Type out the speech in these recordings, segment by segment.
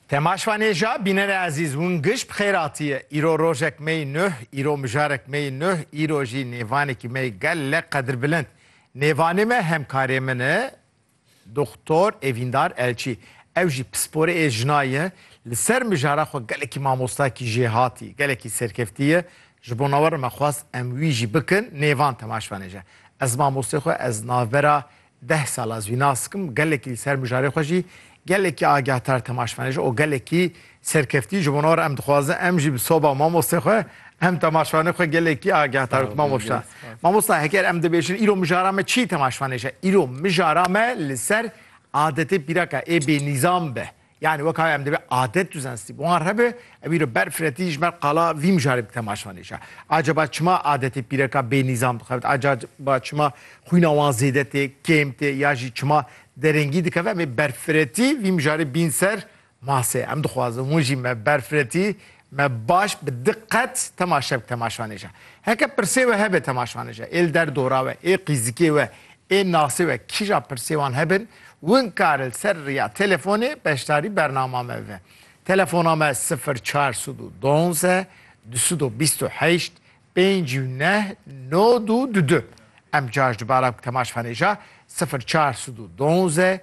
Tema şvanêja bînerê ezîz hûn giş bi xêr atiye. Îro rojek me yî nuh, îro mijarek me yî nuh, îro jî nêvanekî me yî gelek qedirbilind. Nêvanê me hemkarê min e Doktor Evîndar Elçî. Ew jî pisporê ê jina ye. Li ser mijara xwe gelekî mamostakî jê hatî, gelekî serkeftî ye. Ji bo nawerin me xwest em wî jî bikin nêvan tema şvanêje. Ez mamostê xwe ez navbera Deh sal ez wî nas dikim, gelekî li ser mijarê xwe jî gelekî agahtar temaşvanê ji o gelekî serkeftî ji bona re em dixwazin em jî bi soba mamostê xwe em temaşvanê xwe gelekî agahtar bik mamosta. Mamosta heger em dibêjin îro mijara me çî temaşvanê je îro mijara me li ser adetê pîraka ê bênîzam be Yanî weka em divê adet û zensî bi wan re be, ew îro ber firetî ji ber qala vî mijarê bi temaşan hêja. Acaba çima adetê pîreka bê nîzam dixebit? Acaba çima xwîna wan zêde tê, kêm tê ya jî çima derengî dikeve? Em ê berfiretî vî mijarê bîn ser masê. Em dixwazin hûn jî me berfiretî Me baş bi diqet temaşe bi temaşanê je. Heke pirsê we hebe temaşanê je, ê li der dora we, ê qîzikê we, ê nasê we kîja pirsê wan hebin, win kare li ser riya telefonê beşdarî bernama me bibe. Telefona me sifir çar sed û donze du sed û bîst û heşt pênc û neh no du du du. Em caş dubara bi temaşanê je sifir çar sed û donze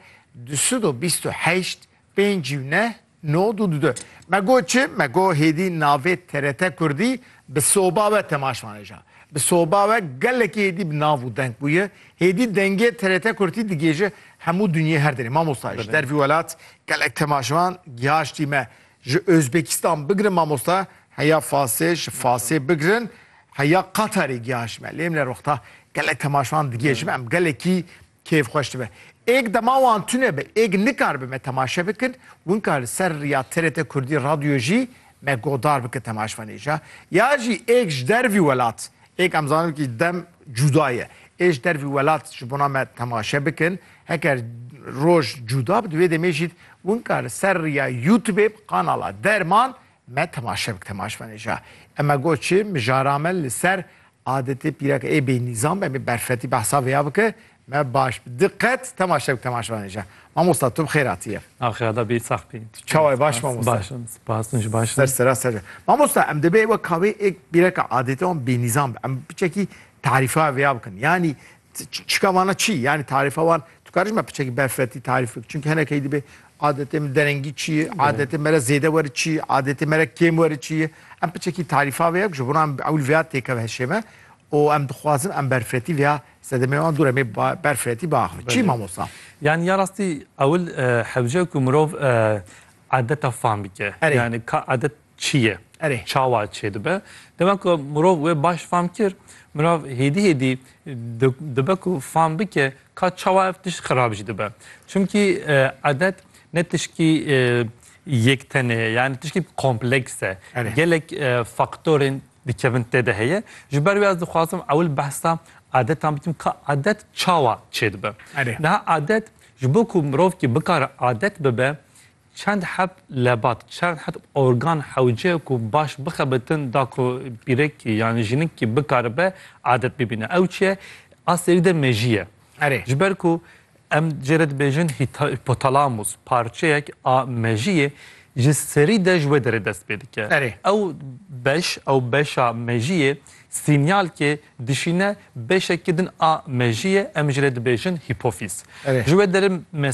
du sed û bîst û heşt pênc û neh Nod û dude. Me got çi? Me got hêdî navê TRT Kurdî bi soba we temaş maneja. Bi soba we gelekî hêdî bi nav û deng bûye. Hêdî dengê TRT Kurdî digihêje hemû dinyê her derê. Mamosta ji dervî welat gelek temaşevan gihaştî me. Ji Ozbekistan bigirin mamosta heya Fasê, ji Fasê bigirin heya Qatarê gihaştî me. Lê em li rexta gelek temaşevan digihêje me. Em gelekî Kêf xweş dibe. Êk dema wan tune be, êk nikaribe me temaşe bikin, winka li ser riya TRT Kurdî Radyoyê jî me godar bikin temaşvanê ja. Ya jî êk ji dervî welat, êk em zanin kî dem cuda ye, ê ji dervî welat ji bona me temaşe bikin, heker roj cuda bi di wê demê jî winka li ser riya Youtubê bi kanala Derman Me temaşe bik temaşmenê ja. Eme got çi, mijara me li ser adetê pîreke ê bênîzam be, em ê berfetî behsa vêya bike, me baş bi diqet temaşe bik temaşmenê ja. Mamosta tu bi xêr hatiyê. Axira da bî sax bî. Tu çawa yî baş mamosta? Baş im, spas min jî baş im. Ser sera ser. Mamosta em dibê wek kavê ê pîreke adetê wan bênîzam be. Em bi çekî tarîfa vêya bikin. Yanî Çika vana çi? Yani tarifa wan tu karî ji me piçekî berfirretî tarîf bikî. Çimkî hinekî dibê adetê min derengî çi ye, adetê me re zêde werî çi ye, adetê me re kêm werî çi ye. Em piçekî tarîfa vê ye ku ji bo em ewil vêya têkeve heşê me û em dixwazin em berfirretî vêya sedemê wan dûr em ê berfirretî biaxivin. Çi mamosta? Yani ya rastî ewil hewce ku mirov adeta fam bike. Yani ka adet çi ye, Erê. çawa çê dibe. Dema ku mirov wê baş fam kir, mirav hêdî hêdî dibe ku fam bike ka çawa ev tişt xirab jî dibe. Çimkî edet ne tişkî yek tenê ye, yanî tişkî kompleks e. Erê. Gelek faktorên dikevin tê de heye. Ji ber wê ez dixwazim ewil behsa edetan bikim ka edet çawa çê dibe. Erê. Niha edet ji bo ku mirovkî bikare edet bibe, Çend heb lebat, çend heb organ hewce ku baş bixebitin da ku pîrekî yanî jinikî bikaribe adet bibîne. Ew çi ye? A serî de mejî ye. Erê. Ji ber ku em cê re dibêjin hîpothalamus parçeyek a mejî yê, ji serî de ji wê derê dest pê dike. Erê. Ew beş, ew beşa mejî yê sînyal kê dişîne beşekî din a mejî ye, em jê re dibêjin hîpofîz. Erê. Ji wê derê